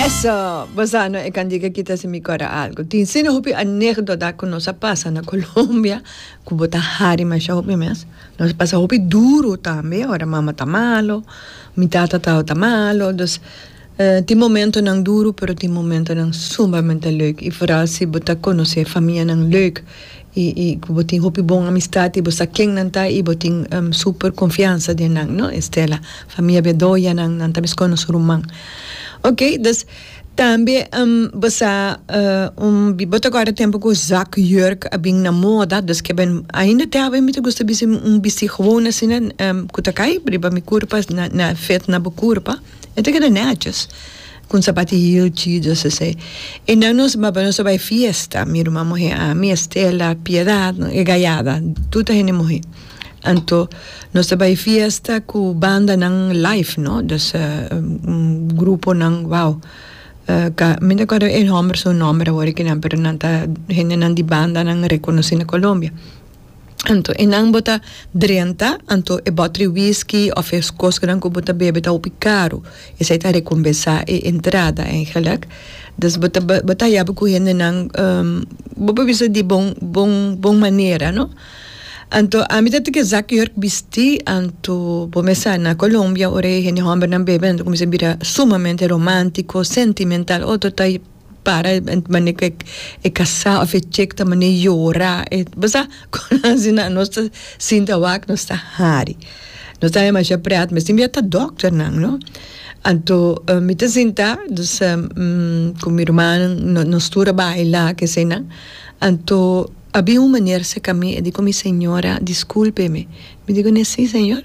Eso! Bosa no e kan di ke kita si mi kòrda algu. Tin asina hopi anekdota ku nos a pasa na Colombia ku bo ta hari masha hopi mes. Nos a pasa hopi duru tambe ora mama ta malo, mi tata tabata ta malo. Dus tin momentonan duru pero tin momentonan sumbamente leuk i foral si bo ta konosé famianan leuk. i i ku bo tin hopi bon amistat i bo sa ken nan ta i bo tin super konfiansa den nan no Estela famia Bedoya nan nan ta mes kon nos ruman ok dus tambe bo sa un bo ta guarda tempu ku zak yurk a bin na moda dus ke ben ainda te awe mi ta gusta bisti un bisti gewoon asina ku ta kai riba mi kurpa na na fit na bo kurpa e ta keda neches. Con zapati heel chidos esey. E nan nos a baba nos a bay fiesta, mi ruma muhe ami, Estela, Piedad, e gayada, tur ta hende muhe. Anto nos ta bay fiesta cu bandanan live, no, dus gruponan, wow, ca, mi no ta acuerdo e homber su nomber awor di kinan pero nan ta hendenan di bandanan reconocina Colombia. Anto e nan bo ta drenta, anto e bòtri whisky òf e kosnan ku bo ta bebe ta hopi karu, esei ta rekompensá e entrada eingelik. Dus bo ta bo ta haya bo ku hendenan bo por bisa di bon bon bon manera, no? Anto ami ta tiki zak jurk bistí, anto bo mes sa na Colombia ora e hende hòmbernan bebe nan ta kuminsá bira sumamente romántiko, sentimental, otro ta Para e mane ku e kasá òf e chek ta mane yora. E bo sa kon asina nos ta sinti awak? Nos ta hari. Nos ta demasha prèt mester mi a ta dòkternan, no? Anto mi ta sinta, dus ku mi rumannan no nos tur a baila ke eseinan. Anto a bin un maner seka mi, a di ku mi, Señora, diskulpe mi. Mi di ku ne, Sí, señor.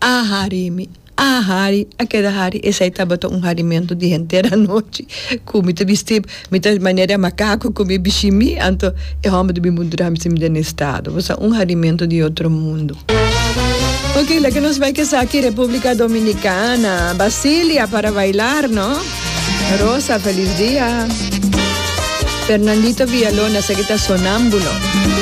A hari mi, a hari, a keda hari, esai tabata un harimentu di henter anochi ku mi ta bisti, mi ta manera e makaku ku mi bishi mi, anto e hòmber di mi mundo ta hasi mi den e stado, bo sa un harimentu di otro mundo. Ok, laga nos bai kesaki Republica Dominicana, Basilia para bailar no, Rosa Feliz Dia, Fernandito Villalona esaki ta Sonambulo.